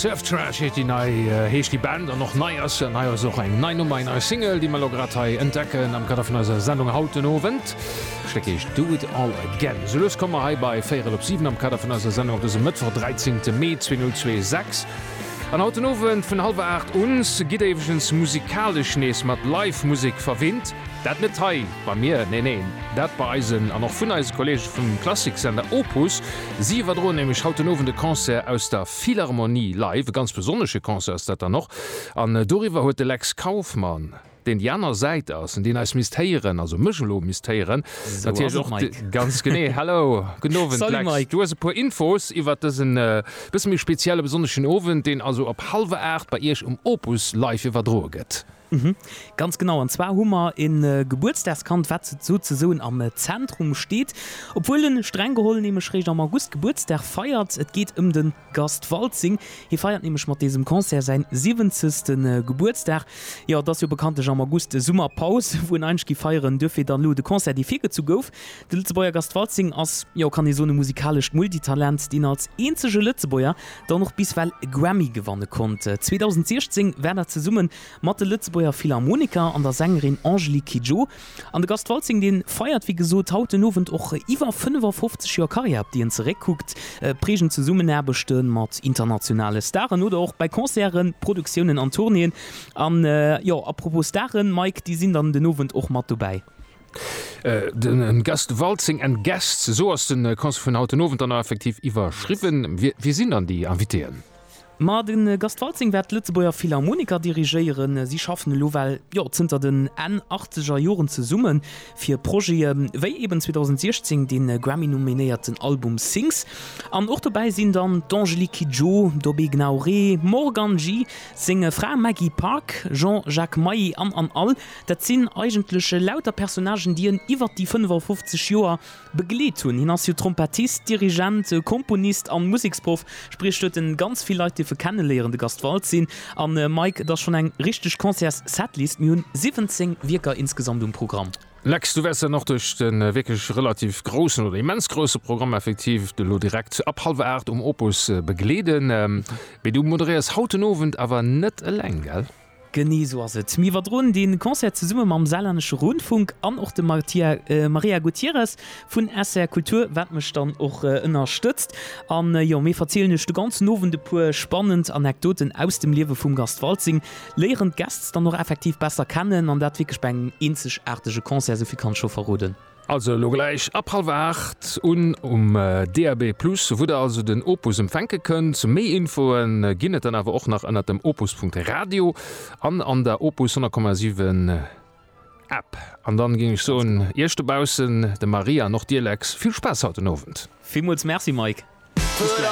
Surf Trash heet déi nei, heescht déi Band an och nei ass se. An hei ass och eng nei Nummer, eng nei Single, déi mer elo grad hei entdecken am Kader vun eiser Sendung haut den Owend. D'Stéck heescht Do It All Again. Esou lues komme mer hei bei véierel op siwen am Kader vun eiser Sendung op dësem Mëttwoch, 13 Mee 2026. An haut den Owend vun hallwer aacht un gitt éiwegens musikalesch nees mat Live-Musek verwinnt. Dat net hei. Bei mir? Neen, neen, dat bei eisen an och vun eise Kollege vum Klassiksender Opus. Si iwwerdroen nämlech haut den Owend e Concert aus der Philharmonie live. E ganz besonnesche Concert ass dat dann och. An doriwwer huet de Lex Kauffmann, deen déi aner Säit ass an deen eis misst héieren, also mech elo misst héieren, natierlech och de. Ganz genee. Hallo, gudden Owend Lex. Du hues e puer Infos iwwert dësen e bësse méi spezielle besonneschen Owend, deen also op hallwer aacht bei Iech um Opus live iwwerdroe gëtt. Mhm, ganz genau. An zwar hu mer e Gebuertsdagskand, wat souzesoen am Zentrum steet, obwuel en streng geholl nämlech réischt am August Gebuertsdag feiert. Et geet ëm de Gast Waltzing. Hie feiert nämlech mat désem Concert säin siwwenzegste Gebuertsdag. Jo, et ass jo bekanntlech am August Summerpaus, wou en eigentlech géif feieren. Duerfir dann elo de Concert, dee virgezu gouf. De Lëtzebuerger Gast Waltzing ass, jo kann ee soen, e musikalescht Multitalent, deen als eenzege Lëtzebuerger dann och bis well e Grammy gewanne konnt. 2016 war dat zesumme mat de Lëtzebuerger Philharmoniker an der Sängerin Angelique Kidjo. An de Gast Waltzing, dee feiert wéi gesot haut den Owend och iwwer 55 Joer Karriär, op déi en zeréckkuckt. Prägend Zesummenaarbechte mat internationale Staren oder och bei Concerten, Produktiounen an Tournéeën. An jo, apropos Staren, Mike, déi sinn dann den Owend och mat dobäi. Den Gast Waltzing and Guests, esou ass den Concert vun haut den Owend dann och effektiv iwwerschriwwen. Wie sinn dann déi Invitéen? Ma den Gast Waltzing wäert d'Lëtzebuerger Philharmoniker dirigéieren. Si schaffen elo well jo zënter den Enn achtzeger Joren zesummen fir Projete wéi eben 2016 den Grammy nominéierten Album Sings. An och dobäi sinn dann d'Angélique Kidjo, Dobé Gnauré, Morgan G, seng Fra Maggie Park, Jean Jacques Mailly an an all Dat sinn eigentlech lauter Personnagen, déi en iwwert déi 55 Joer begleet hunn. Hien ass jo Trompettist, Dirigent, Komponist an Museksproff, spriech huet en ganz vill Leit dierfe kenneléieren. De Gast Waltzin an Mike, et ass schonn eng richteg Concerts-Setlist, mir hunn 17 Wierker insgesamt um Programm. Lex, du wäers dann och duerch de wierklech relativ groussen oder immens grousse Programm effektiv elo direkt ab hallwer 8 um Opus begleeden. Mee du moderéiers haut den Owend awer net eleng, gell? Genee sou ass et. Mir iwwerdroen dee Concert zesumme mam Saarlännesche Rundfunk an och dem Maria Gutierrez vun SR Kultur, wat mech dann och ënnerstëtzt. An jo, mir verzielen iech de ganzen Owend e puer spannend Anekdoten aus dem Liewe vum Gast Waltzing, léieren d'Guests dann och effektiv besser kennen an dat wierklech bei engem eenzegaartege Concert, esou vill kann ech scho verroden. Also elo gläich ab hallwer 8 un um DAB+ wou der also den Opus empfänke kënnt. Méi Infoe ginn et dann awer och nach ënnert dem opus.radio an an der Opus 100,7 App. An dann géing ech soen, Iech dobaussen, dem Marie an och dir Lex, vill Spaass haut den Owend. Villmools Merci Mike. Bis gläich.